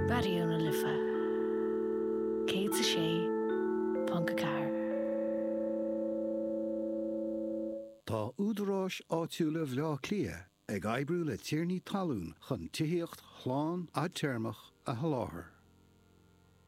Raidió na Life 106.4. Tá údaráis áitiúla Bhleá Cliath ag oibriú le tiarnaí talún chun tithíocht shlán fhadtéarmach a sholáthar.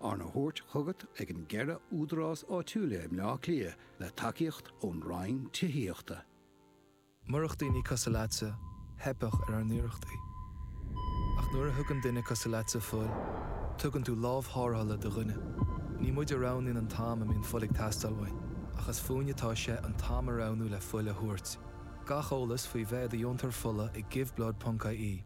Arna thabhairt chugat ag an gceithre údarás áitiúil i mBleá Cliath le tacaíocht ón Roinn Tithíochta. Murach daoine cosúil leatsa, theipfeadh ar ár n-iarrachtaí. Ach nuair a thugann duine cosúil leatsa fuil, tugann tú lámh tharrthála do dhuine. Ní muid a roghnaíonn an t-am a mbíonn fuil ag teastáil uainn, ach is fúinn atá sé an t-am a roghnú le fuil a thabhairt. Gach eolas faoi bheith i do dheontóir fola ag Give Blood ponc ie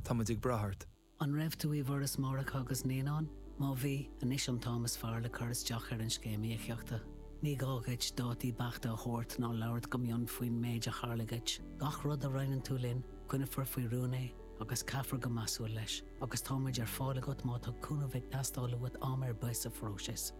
Tá muid ag brath ort. An raibh tú i bhForas Máithreacha agus Naíonán? Má bhí, anois an t-am is fearr le cur isteach ar an Scéim Íocaíochta. Ní gá duit dátaí beachta a thabhairt ná labhairt go mion faoin méid a tharla duit. Gach rud a roinneann tú linn, coinneofar faoi rún é agus caithfear go measúil leis, agus táimid ar fáil agat má tá cúnamh ag teastáil uait am ar bith sa phróiseas.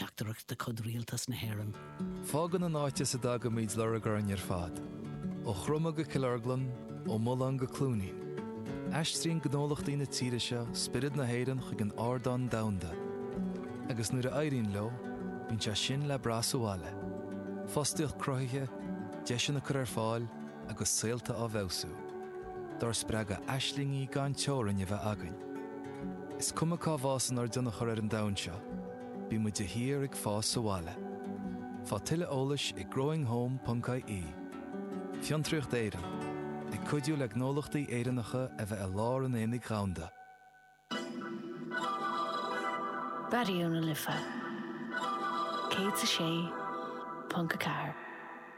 Teachtaireacht de chuid Rialtas na hÉireann. Fágann an áit as a dtagaimid lorg orainn ar fad. Ó Chromadh go Cill Orglan, ó Mhullán go Cluainín. Aistríonn gnólachtaí na tíre seo spiorad na hÉireann chuig an ardán domhanda. Agus nuair a éiríonn leo, bíonn sé sin le brath sa bhaile. Fostaíocht cruthaithe, deiseanna curtha ar fáil agus saolta á bhfeabhsú. Dár spreagadh aislingí gan teorainn a bheith againn. Is cuma cá bhfásann ár dtionchar ar an domhan seo. Bíonn muid de shíor ag fás sa bhaile. Faigh tuilleadh eolais ag growinghome.ie. Fiontraíocht Éireann, ag cuidiú le gnólachtaí Éireannacha a bheith i lár an aonaigh dhomhanda. Raidió na Life 106.4.